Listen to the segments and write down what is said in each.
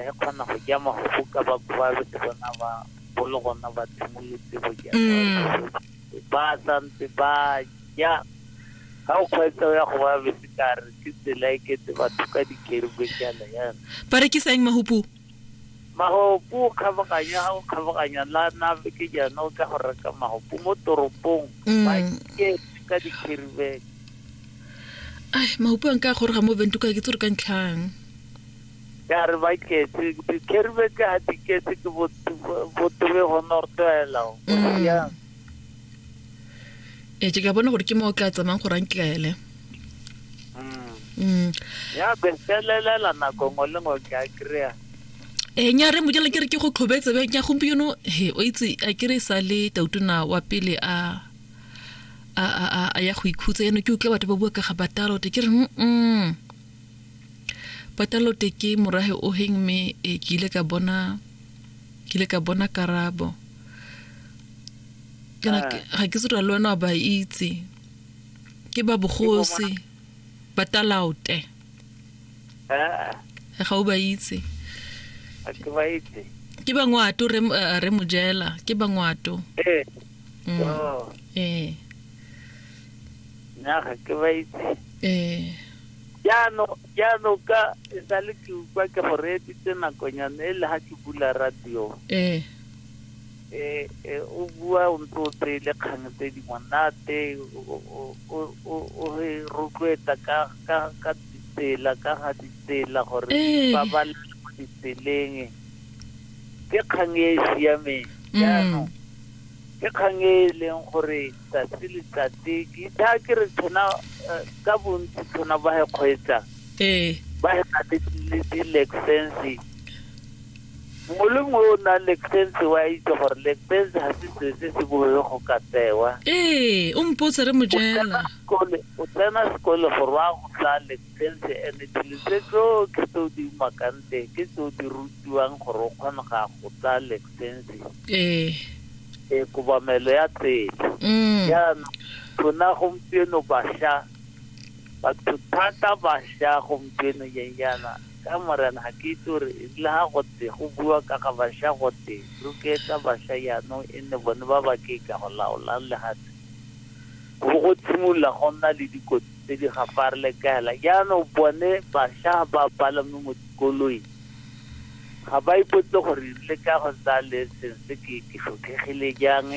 re kgona go ja magogo ka ba babe ke bona ba bolo gona ba tshimolotse go ja mm. ba santse ba ja ga o kgweetsa o ya go ba bese ka re ke tsela e kete batho ka dikerube jalo yana ba rekisang mahupu mahopu o kgabaganya ga o kgabaganya la nabe ke jana o tla go reka mahopu mo toropong mm. ba ke ka dikerube ai mahupu a nka goroga mo bentuka ke tse re ka ntlhang Ka re ba ketse, dikherube ka ha di ketse ke botobe gona go tlwaela. Mm. Ee, ke ka bona gore ke mo o tla tsamayng gore a ntlele. Mm. Mm. Ya be felelela nako ngwe le ngwe ke a kry-a. e nya re mojela ke re ke go tlhobetse be nya gompieno he o itse a ke re sa le tautona wa pele a a a ya go ikhutsa eno ke utlwa batho ba bua ka ga batalo te ke re mm Patalote ke morahe oheng mme e ke ile ka bona ke ile ka bona karabo. Kana ah. ga ke tsira le wena wa ba itse. Ke ba bogosi ba talaote. Ah. Ga o ba itse. Ke ba itse. Ke bangwato re eh, re mojela ke bangwato. Eh. Mm. Oh. Eh. nna ga ke ba itse ee jaanong jaanong ka e sa le ke utlwa ke go reeditse nakonyana e le ga ke bula radio ee eh, eh, o bua o ntse o tseye le kgang tse di monate o- o- o- o- o re rotloetsa ka ka- ka ditsela ka ga ditsela gore Ee. ba ba le mo ditseleng ke kgang e e siameng jaanong ke kgang e e leng gore tsatsi le tsatsi ke itha ke re tshona eh, ka bontsi tshona ba he kgweetsa ee ba he na le le di-lexense mongwe le mongwe o nang lexense wa itse gore lexense ga se se se se boe go ka tsewa ee o mpotse re mo jela Kole- o tsena sekole gore wa go tsaya Tshentse, and dilo tse tsotlhe tse o di umakang teng ke tse o di rutiwang gore o kgone ga go tsaya lexense ee e kobamelo ya tsela mm. jaanong rona gompieno bašwa batho thata bašwa gompieno nyenyana ka morena ga ke itse gore le ga gote go bua ka ga bašwa gote roketsa bašwa jaanong e nne bone ba ba ke ka go laolang legatshe go go tshimolola go nna le dikotsi tse di ga farlekela jaanong bone basha ba palame mo dikoloi ga ba ipotse gore le ka go tsa leseng se ke ke tlhokhegile jang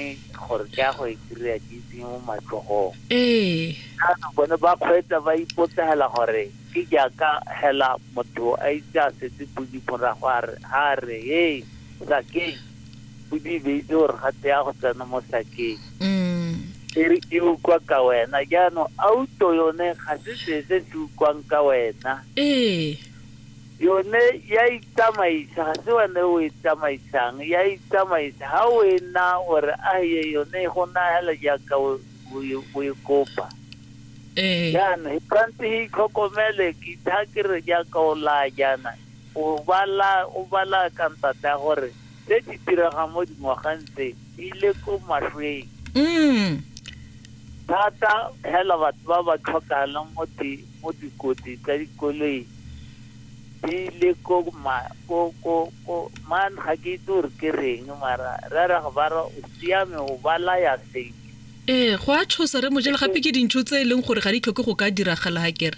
gore ke ya go e kry-a ke itseng mo matlhogong ee jaanong bone ba kgweetsa ba ipotsegela gore ke jaaka hela motho a itse a setse podi morago a re- a re hey sakeng o di beitse gore ga te ya go tsena mo sakeng mm. e re e ukwa ka wena jaanong auto yone ga se se se se ukwang ka wena ee yone ya itsamaisa ga se wene o e tsamaisang ya itsamaisa ga o e na gore a ye yone e go nagela jaaka o o e- o e kopa ee jaana e tshwanetse e itlhokomele ke tha ke re jaaka o laya jaana O bala, o bala ka ntate ya gore tse di diregang mo dingwageng tse di ile ko mašweng Mm. thata fela batho ba ba tlhokahalang mo di mo dikotsi tsa dikoloi di ile ko ma ko ko ko man ga ke itse gore ke reng mara re re ga ba re o siame o balaya seng ee go a tshosa re mojele gape ke dintho tse e leng gore ga di tlhoke go ka diragala ga kere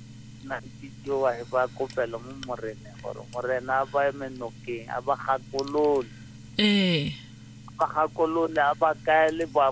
Na ke tšeo a heba kopelo mo Moreneng gore Morena a ba eme nokeng, a ba gakolole. Ee. A ba gakolole, a ba kaele boamamare.